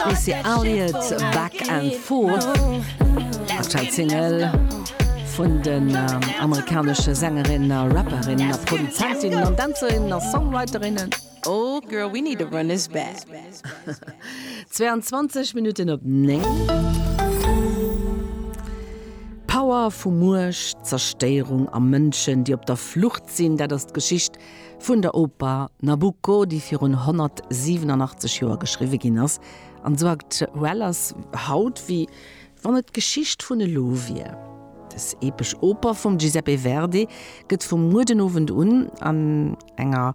Missy Elliott, Back and Forth, aktuell Single vun den amerikanesche Sängerin, Rapperin, Produzentin an Dänzerin a Songwriterin. Oh girl, we need to run this back. 22 Minutten op 9. D'Power vu Muecht, Zerstéierung a Mënschen, déi op der Flucht sinn, dat ass d'Geschicht, Vun der Oper Nabucco, déi virun 187 Joer geschriwwe ginn ass, an esou aktuell ass haut, wéi wann et d'Geschicht vun elo wier. Dës epesch Oper vum Giuseppe Verdi gëtt vum Muedenowend un an enger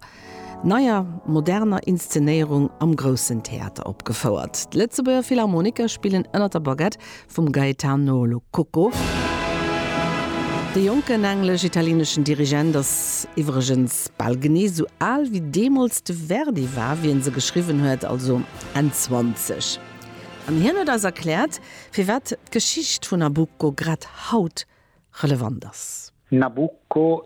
neier, moderner Inszenéierung am Groussen Theater opgefouert. D'Lëtzebuerger Philharmoniker spillen ënner der Baguette vum Gaetano Lococo. De jonken englesch-italieneschen Dirigent ass iwwregens bal genee sou al wéi deemools de Verdi war, wéi en se geschriwwen huet, also Enn 20. An hien huet eis erkläert, firwat d'Geschicht vun Nabucco grad haut relevant ass. Nabucco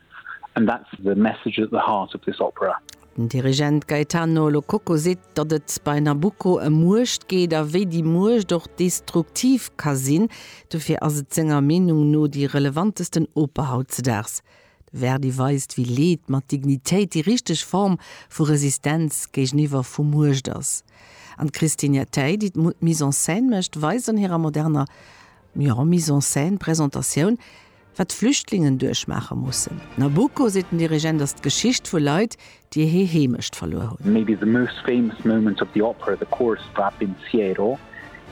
And that's the message at the heart of this opera. Den Dirigent Gaetano Lo Cocco seet, datt et bei Nabucco ëm Muecht geet a wéi déi Muecht och destruktiv ka sinn. Dofir ass et senger Meenung no déi relevantesten Oper hautzedaags. De Verdi weist, wéi Leed mat Dignitéit déi richteg Form vu Resistenz géigeniwwer vu Muecht ass. An d'Christine Jattei, déi d'Mise en scène mécht, weist an hirer moderner, jo, Mise en scène-Presentatioun, Wat d'Flüchtlingen duerchmaache mussen. Nabucco, seet den Dirigent, ass d'Geschicht vu Leit, déi hir Heemecht verluer hunn. Maybe the most famous moment of the opera, the chorus of Al Pensiero,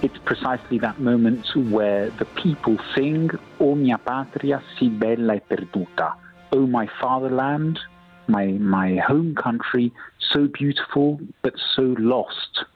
it's precisely that moment where the people sing O mia patria si bella e perduta, Oh my fatherland, my my home country, so beautiful but so lost.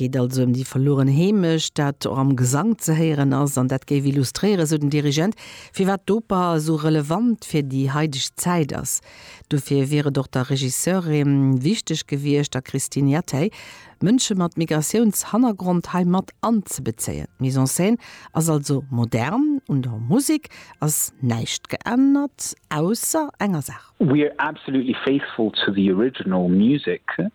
Et geet also ëm déi verlueren Heemecht, dat och am Gesank ze héieren ass an dat géif illustréieren, sou den Dirigent, firwat d'Oper esou relevant fir déi haideg Zäit ass. Dofir wier et och der Regisseurin wichteg gewiescht, der Christine Jathay, Mënsche mat Migratiounshannergrond hei mat anzebezéien. D'Mise en scène ass also modern, un der Musek ass näischt geännert, ausser enger Saach. We are absolutely faithful to the original music,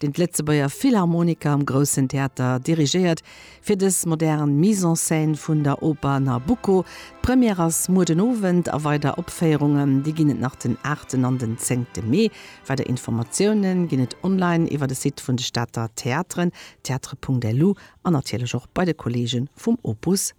deen d'Lëtzebuerger Philharmoniker am Groussen Theater dirigéiert, fir dës modern Mise en scène vun der Oper Nabucco. D'Première ass muer den Owend a weider Opféierungen, déi ginn et nach den aachten an den zéngte Mee. Weider Informatioune ginn et online iwwer de Site vun de Stater Theateren, theatre.lu, an natierlech och bei de Kolleege vum Opus.